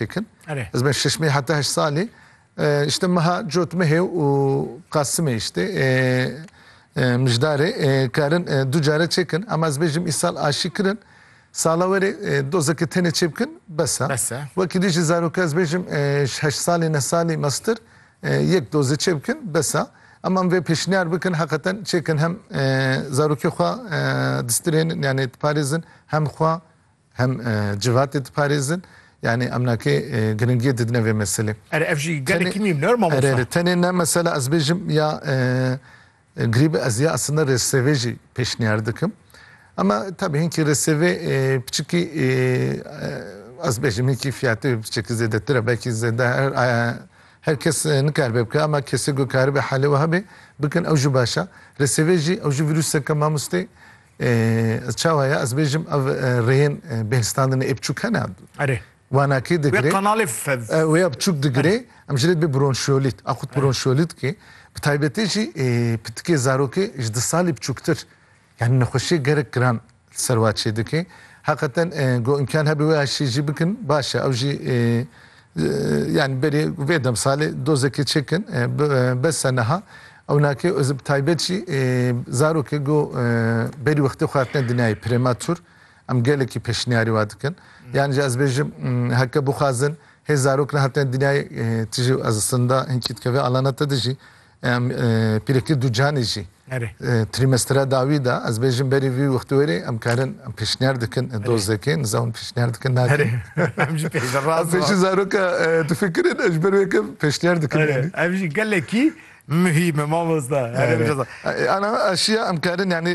Pêkin. Ez ben şeş meh heta heşt salê işte meha cot mehê û qasimê işte mijdarê karin du care çêkin em ez bêjim îsal aşî kirin sala werê dozeke tenê çê bikin besa wekî dî jî zaroka ez bêjim heşt salê ne salî mestir yek dozê çê bikin besa em em vê pêşniyar bikin heqeten çêkin hem zarokê xwe distirênin yani diparêzin hem xwe Hem civatê diparêzin. Yanî em nakê giringiyê didine vê meselê. Erê ev jî gelekî mîm ne mamosta? Erê erê tenê ne mesela ez bêjim ya grîbe ez ya eslinda rêsevê jî pêşniyar dikim. Ema tabî hinkî rêsevê piçikî ez bêjim hinkî fiyatê wê piçikî zêdetir e belkî zêde her kes nikaribe bike ema kesê ku karibe helê wiha bê bikin ew jî baş e. Rêsevê jî ew jî vîruseke mamostê Çawa ye ez bêjim ev rêyên bêhsitandinê ê biçûk hene? Erê. Wana kê digirê? Wê qanalê fev. Wê ya biçûk digirê. Em ji rê dibê bronşiyolît. A xwit bronşiyolît kê. Bi taybetî jî pitikê zarokê ji di salî biçûktir. Yanî nexweşiyê gerek giran li ser wan çêdike. Heqeten ku îmkan hebe wê aşî jî bikin baş e. Ew jî Yani berê vê demsalê dozekê çêkin bes e niha ewnakê ez bi taybet jî zarokê go berî wextê xwe hatine dinyayê prematur em gelekî pêşniyarî wa dikin. Yani jî ez bêjim heke bixwazin hê zarok nehatine dinyayê tu jî ez sinda hinkî dike vê alana te de jî Em pîrekî du canê jî trîmestra dawî de ez bêjim berî vî wextî werê em karin em pêşniyar dikin dozekê niza hûn pêşniyar dikin nakin em jî pêşî zaroka difikirin ez ji ber wê kem pêşniyar dikin ev jî gelekî mühîm e mamosta ana aşiya em karin yanî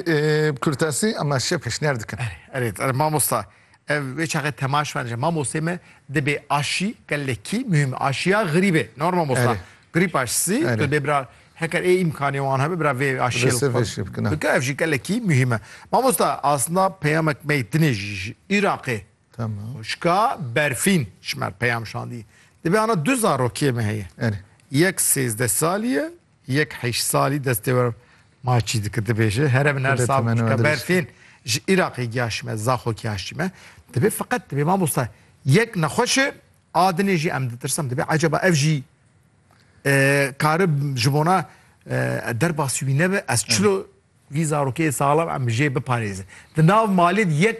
kurtasî em aşiya pêşniyar dikin erê mamosta Ev wê çaxê tema şivan je. Mamostê me dibê aşî gelekî muhîm aşiya xirîbê. Nor mamosta. Grîp aşisî tu bê bira heker ê îmkanê wan hebe bira vê aşiyê bike ev jî gelekî muhîm e. Mamosta aslında peyamek me dinê jî ji Îraqê xuşka berfîn ji me peyam şandî. Dibê ana du zarokiyê me heye. Yek sêzdeh salî ye Yek heyşt salî destê we ma çî dike dibêje here min her sal çika berfên ji Iraqê giyaşîme zaxo giyaşîme dibê feqet dibê mamosta yek nexweşe adinê jî em ditirsim dibê ecaba ev jî kari ji bona derbasî wî nebe ez çilo vî zarokê salam em jê biparêzin di nav malê yek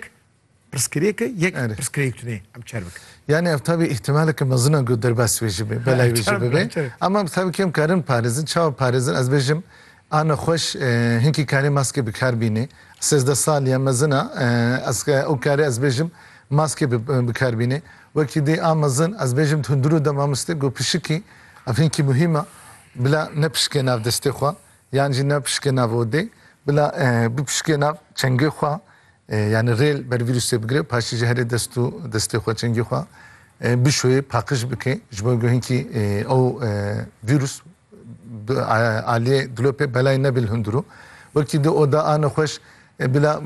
Pirsgirêke yek Erê. pirsgirêk tune ye. Em çer bikin. Yanî ev taybî îhtîmaleke mezin e ku derbas wê jî bê, belayê wê jî Çer bikin, bibe. çer bikin. Ama em taybî kêm karin parêzin. Çawa parêzin? Ez bêjim a nexweş e, hinkî karê maskê bi kar bînê. Sêzdeh sal ya mezin a e, ez e, ew karê ez bêjim maskê bi bi kar bînê. Wekî dê a mezin ez bêjim hundirû de mamostê ku pişikî ev hinkî muhîm e. Bila nepişike nav destê xwe. Yan jî nepişikê nav odê, bila bipişikê nav çengê xwe, yanî rêl ber vîrûsê bigire, paşê jî herê dest û destê xwe, çengê xwe bişoyê, paqij bike ji bo ku hinkî ew vîrûs bi aliyê dilopê belayê nebê li hundirû. Wekî di oda a nexweş bila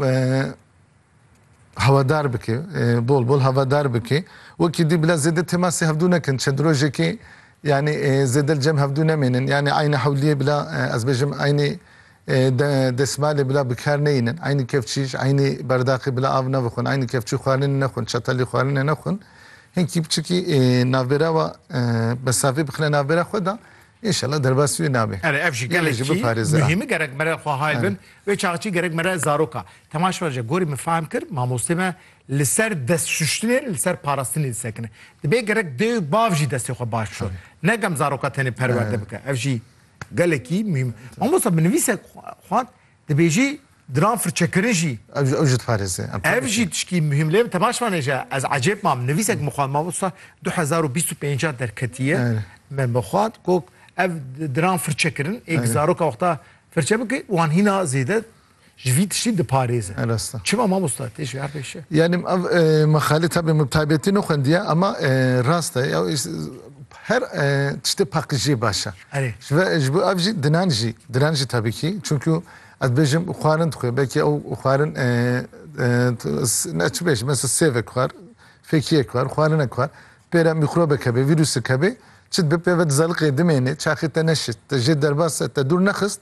Hawadar bike, bol bol hawadar bike. Wekî dî bila zêde temasê hevdû nekin. Çend rojekê yanî zêde li cem hevdû nemênin. Yanî eynî hewliyê bila ez bêjim eynî desmalê bila bi kar neyînin. Eynî kevçî ji eynî berdaqê bila av nevixwin. Eynî kevçî xwarinê nexwin, çetelî xwarinê nexwin. Hinkî biçikî navbêra wa mesafê bixine navbêra xwe de înşela derbasî wê nabe. Ere ev jî gelekî muhîm e. Gerek mere xwe hay bin. Wê çaxçî gerek mere zaroka. Temaş ver ji gorî min fehm kir mamostê me li ser dest şuştinê li ser parastinê disekine. Dibê gerek dê û bav jî destê xwe baş bişon. Ne gem zaroka tenê perwerde bike. Ev jî gelekî muhîm e. Mamosta bi nivîsek xwend dibêjî diran firçekirin jî. Ev jî ew jî diparêze. Ev jî tişkî muhîm lê min temaş vanê ji ez ecêb mam nivîsek min xwend mamosta du hezar û bîst û pênc derketiye me min xwend got ev diran firçekirin ê zaroka wexta firçe bike wan hîna zêde Ji vî tiştî diparêzin. E rast e. Çima mamosta tê ji her pê şe? Yani em ev e, mexale tabi min taybetî nexwendiye ama e, rast e. Ew is- Her e, tiştê paqijiyê baş e. Erê. Ji ve- ji bo ev jî dinan jî, dinan jî tabi kî. Çünkü ez bêjim xwarin dixwe. Belkî ew xwarin e, e, t- s- ne çi bêjim mesela sêvek xwar, fekiyek xwar, xwarinek xwar. Pêre mîkrobek hebe, vîrusek hebe. Çi dibe pê ve dizaliqê dimêne, çaxê te neşit, te jê derbas e, te dûr nexist.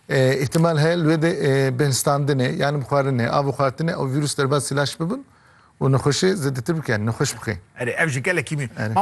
Îhtimal heye li wê de bêhnistandinê yanî bixwarinê a bixwartinê ew vîrûs derbas îlaç bibin û nexweşê zêdetir bike, nexweş bike. Erê ev jî gelekî mî. Mamosta.